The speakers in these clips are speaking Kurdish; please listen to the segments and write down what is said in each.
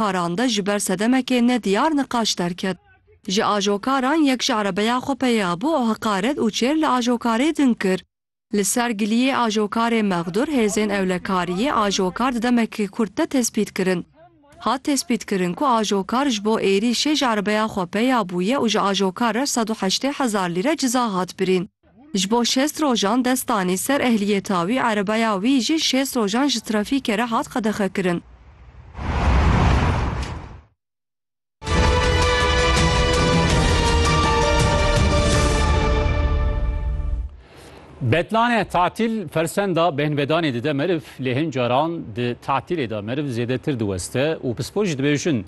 parande ji ber sedemekê nediyar niqaş derket. Ji ajokaran yek ji erebeya xwe peya bû û heqaret û çêr li ajokarê din kir. Li ser giliyê ajokarê mexdur hêzên ewlekariyê ajokar di demekî kurt de tespît kirin. Hat tespît kirin ku ajokar ji bo êrîşê ji erebeya xwe peya bûye û ji ajokar re sed û heştê hezar lîre ciza hat birîn. Ji bo şêst rojan dest danî ser ehliyeta wî, erebaya wî jî şêst rojan ji trafîkê re hat qedexekirin. Betlane tatil fersenda bêhnvedanê dide meriv lê hin caran di tatilê de meriv zêdetir diweste û pispor jî dibêjin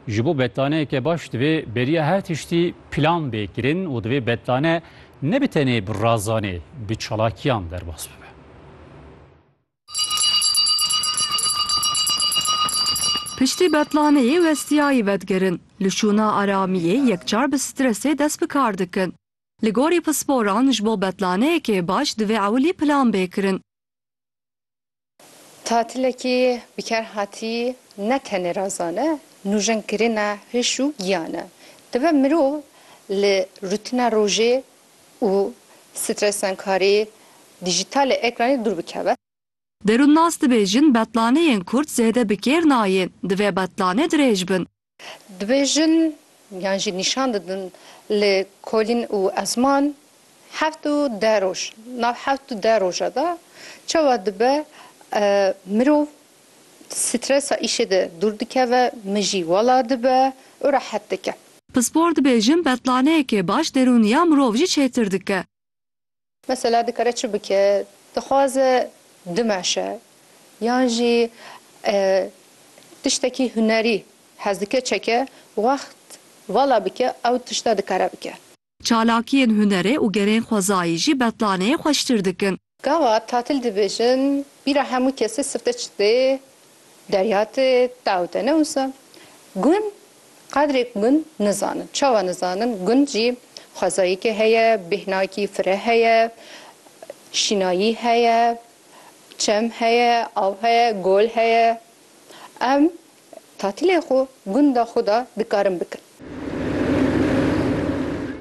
ji bo betlaneyeke baş divê beriya her tiştî plan bê kirin û divê betlane Ne bi tenê bi razanê, bi çalakiyan derbas bibe. Piştî betlaneyê westiyayî vedigirin, li şûna aramiyê yekcar bi stresê dest bi kar dikin. Li gorî pisporan ji bo betlaneyekê baş divê ewilî plan bê kirin. Tatilekî bikarhatî ne tenê razan e, nûjenkirina hişk û giyan e. Dibe mirov li rûtina rojê û stresankarî dîjîtalê ekranê dûr bikeve. Derûnnas dibêjin betlaneyên kurd zêde bi kêr nayên, divê betlanê dirêj bin. Dibêjin yan jî nîşan didin li Kolîn û Ezman heft û deh roj nav heft û deh roja de çawa dibe mirov stresa îşê de dûr dikeve, mijî wela dibe û rehet dike. Pispor dibêjin betlaneyekê baş derûniya mirov jî çêtir dike. Mesela dikare çi bike? Dixwaze dimeşe yan jî tiştekî hunerî hez dike çeke wext vala bike ew tişta dikare bike. Çalakiyên hunerê û gerên xwezayî jî betlaneyê xweştir dikin. Gava tatil dibêjin bîra hemû kesê sifte çi tê Derya tê taw de ne wisa. Gund qedrêk gund nizanin. Çawa nizanin? Gund jî xwezayîkê heye, bêhnakî fireh heye, şînayî heye, çem heye, av heye, gol heye. Em tatilê xwe gunda xwe de dikarin bikin.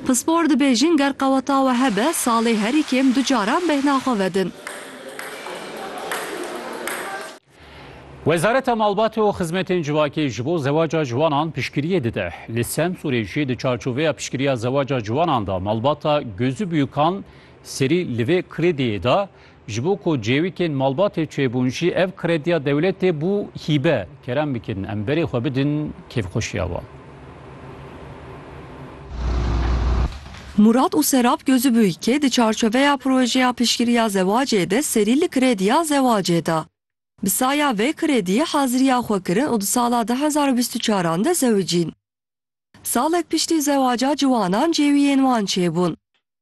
Pispor dibêjin ger qeweta we hebe salê herî kêm du caran bêhna xwe vedin. Wezareta Malbatê û Xizmetên Civakê ji bo zewaca ciwanan piştgiriyê dide. Li Semsûrê jî di çarçoveya piştgiriya zewaca ciwanan de malbata Gözü Büyükan serî li vê krêdiyê de Ji bo ku cêwîkên malbatê çêbûn jî ev krediya dewletê bû hîbe. Kerem bikin em berê xwe bidin kêfxweşiya wan. Murat û Serap Gözübüyke di çarçoveya projeya piştgiriya zewacê de serî li krediya zewacê da. Bi saya vê krediyê haziriya xwe kirin û di sala du hezar û bîst û çaran de zewicîn. Salek piştî zewaca ciwanan cêwiyên wan çêbûn.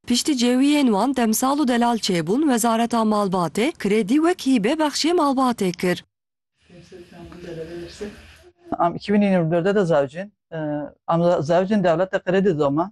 Piştî cêwiyên wan demsal û delal çêbûn wezareta malbatê krêdî wek hîbe bexşê malbatê kir. Am iki bin yirmi dû de de zewicîn. Am zewicîn dewlete krêdî doma.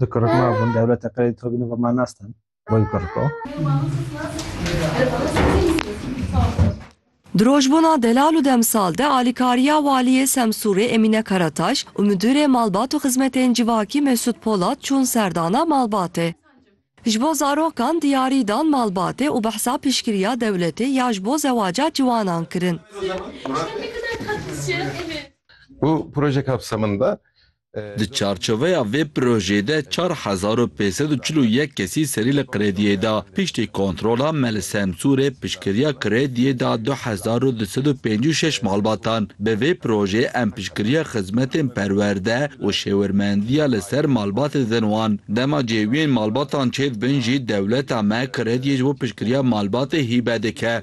Di kuruk mabûn dewleta qirê di xwe nûva ma nastan bo yu kuruk o. Di rojbûna delal û demsal de alîkariya Waliyê Semsûrê Emîne Karataş û Midûrê Malbat û Xizmetên Civakî Mesûd Polat çûn serdana malbatê. Ji bo zarokan diyarî dan malbatê û behsa piştgiriya dewletê ya ji bo zewaca ciwanan kirin. Bu proje kapsamında Di çarçoveya vê projeyê de çar hezar û pênc sed û çil û yek kesî serî li krêdiyê da. Piştî kontrola me li Semsûrê piştgiriya krêdiyê da du hezar û du sed û pêncî û şeş malbatan. Bi vê projeyê em piştgiriya xizmetên perwerde û şêwirmendiya li ser malbatê didin wan. Dema cêwiyên malbatan çêdibin jî dewleta me krêdiyê ji bo piştgiriya malbatê hîbe dike.